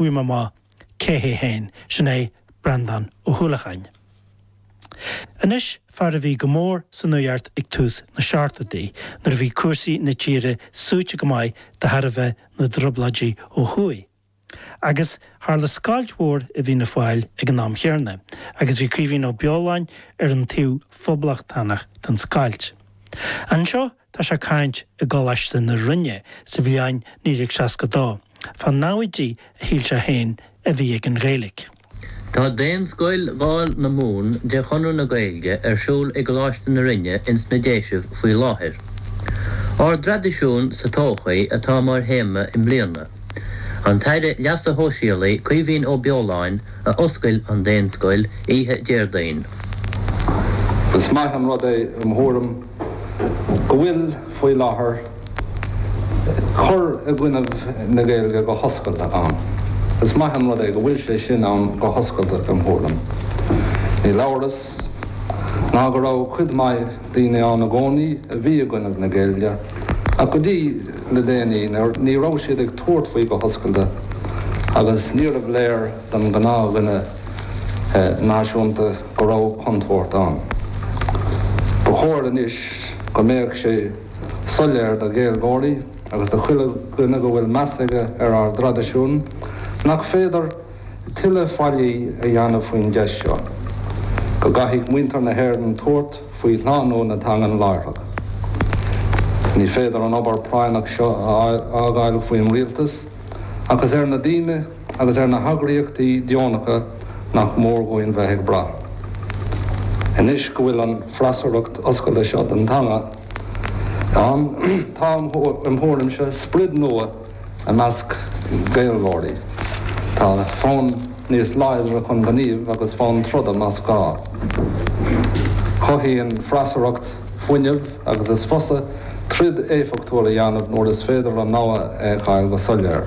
Bhí mé amuigh cé hé féin, sin é Breandán Ó hUallacháin. Anois, fear a bhí go mór sa nuaíocht ag tús na seachtóidí nuair a bhí cúrsaí na tíre suaite go maith de thairbhe na dtrioblóidí ó thuaidh. Agus tharla scoilt mhór i bhFianna Fáil ag an am chéanna agus bhí Caoimhín Ó Beoláin ar an taobh phoblachtánach den scoilt. Anseo Tá sé ag caint i gColáiste na Rinne sa bhliain 1962 fá naimhde a shíl sé féin a bhí ag an Ghaeilge. Tá Daonscoil Dháil na Mumhan de Chonradh na Gaeilge ar siúl i gColáiste na Rinne ins na Déisibh faoi láthair. Ár dtraidisiún sa todhchaí atá mar théama i mbliana. An tAire Leasa Shóisialaigh, Caoimhín Ó Beoláin, a d'oscail an Daonscoil oíche Déardaoin. Is maith an rud é, im' thuairim. go bhfuil, faoi láthair, cur i gcoinnibh na Gaeilge go hoscailte ann. Is maith an rud é go bhfuil sé sin ann go hoscailte, im' thuairim. Níl amhras ná go raibh cuid maith daoine ann i gcónaí a bhí i gcoinnibh na Gaeilge, ach go dtí le déanaí ní raibh siad ag tabhairt faoi go hoscailte agus níorbh léir don ghnáthdhuine náisiúnta, go raibh contúirt ann. Ba chóir anois go mbeadh sé soiléir do Ghaeilgeoirí agus do chuile dhuine go bhfuil meas aige ar ár dtraidisiún nach féidir tuilleadh faillí a dhéanamh faoin gceist seo, go gcaithfidh muintir na hÉireann tabhairt faoi shlánú na teangan láithreach. Ní féidir an obair práinneach seo a fhágáil faoin Rialtas ach is ar na ndaoine, agus ar na heagraíochtaí deonacha nach mór dúinn bheith ag brath. Anois go bhfuil an freasúracht oscailte seo don teanga ann, tá, im thuairimse, sprid nua i measc Gaeilgeoirí. Tá fonn níos láidre chun gnímh agus fonn troda más gá. Cothaíonn freasúracht fuinneamh. agus is fusa troid éifeachtúil a dhéanamh nuair is féidir an namhaid a fheiceáil go soiléir.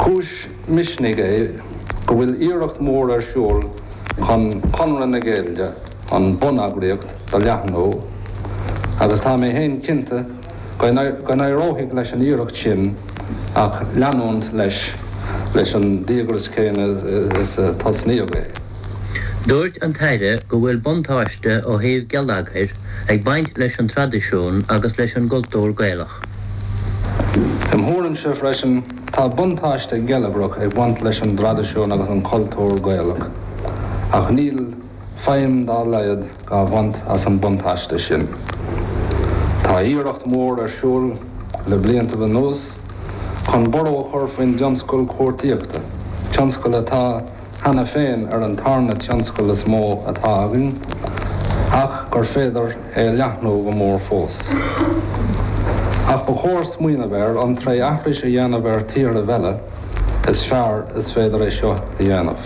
Cúis misnigh é go bhfuil iarracht mhór ar siúl chun Conradh na Gaeilge, an bun-eagraíocht, do leathnú, agus tá mé féin cinnte, Go n-éireoidh leis an iarracht sin ach leanúint leis leis an díograis chéanna is a tosnaíodh é. Dúirt an tAire go bhfuil buntáiste ó thaobh geilleagair ag baint leis an traidisiún agus leis an gcultúr Gaelach. Im thuairimse freisin, tá buntáiste geilleagrach ag baint leis an dtraidisiún agus an cultúr Gaelach, ach níl. feidhm dá laghad á bhaint as an mbuntáiste sin. Tá iarracht mhór ar siúl le bliantaibh anuas chun borradh a chur faoin dtionscal cuartaíochta, tionscal atá, cheana féin, ar an tarna tionscal is mó atá againn ach gur féidir é a leathnú go mór fós. Ach ba chóir smaoineamh air an tré aithris a dhéanamh ar thíorthaibh eile is fearr is féidir é seo a dhéanamh.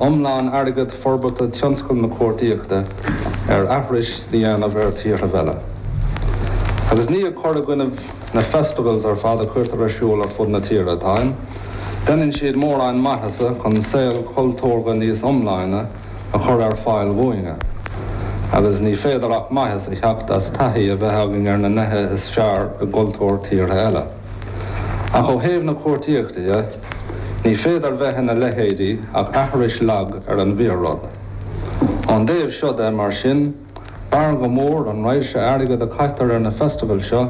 iomlán airgead forbartha tionscal na cuartaíochta ar aithris a dhéanamh ar thíortha eile. Agus ní ag cur i gcoinnibh na festivals ar fad a cuirtear ar siúl ar fud na tíre atáim, deineann siad mórán maitheasa chun saol cultúrtha níos iomláine a chur ar fáil dúinne, agus ní féidir ach maitheas a theacht as taithí a bheith againn ar na nithe is fearr i gcultúr tíortha eile. Ach ó thaobh na cuartaíochta dhe, ní féidir bheith ina leithéidí ach aithris lag ar an bhfíor-rud. Ón dtaobh seo de, mar sin, b'fhearr go mór an raidhse airgid a chaitear ar na festivals seo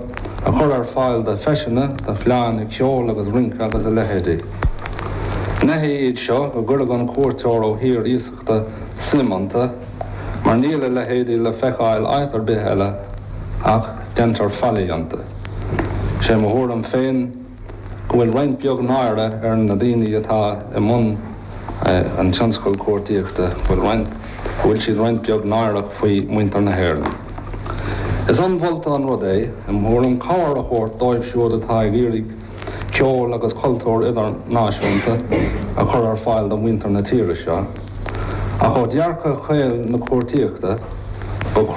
a chur ar fáil do feiseanna, do fleánna ceoil agus rince agus a leithéidí. Gneithe iad seo go gcuirfeadh an cuairteoir ó thír suim iontu, mar níl a leithéidí le feiceáil áit ar bith eile, ach deintear faillí iontu. Sé mo thuairim féin go bhfuil roinnt beag náire ar na daoine atá i mbun an tionscail cuartaíochta, go bhfuil roinnt, go bhfuil siad roinnt beag náireach faoi mhuintir na hÉireann. Is ionmholta an rud é, im thuairim, cabhair a thabhairt dóibh siúd atá ag iarraidh, ceol agus cultúr idirnáisiúnta a chur ar fáil do mhuintir na tíre seo. Ach ó dhearcadh caol na cuartaíochta, ba.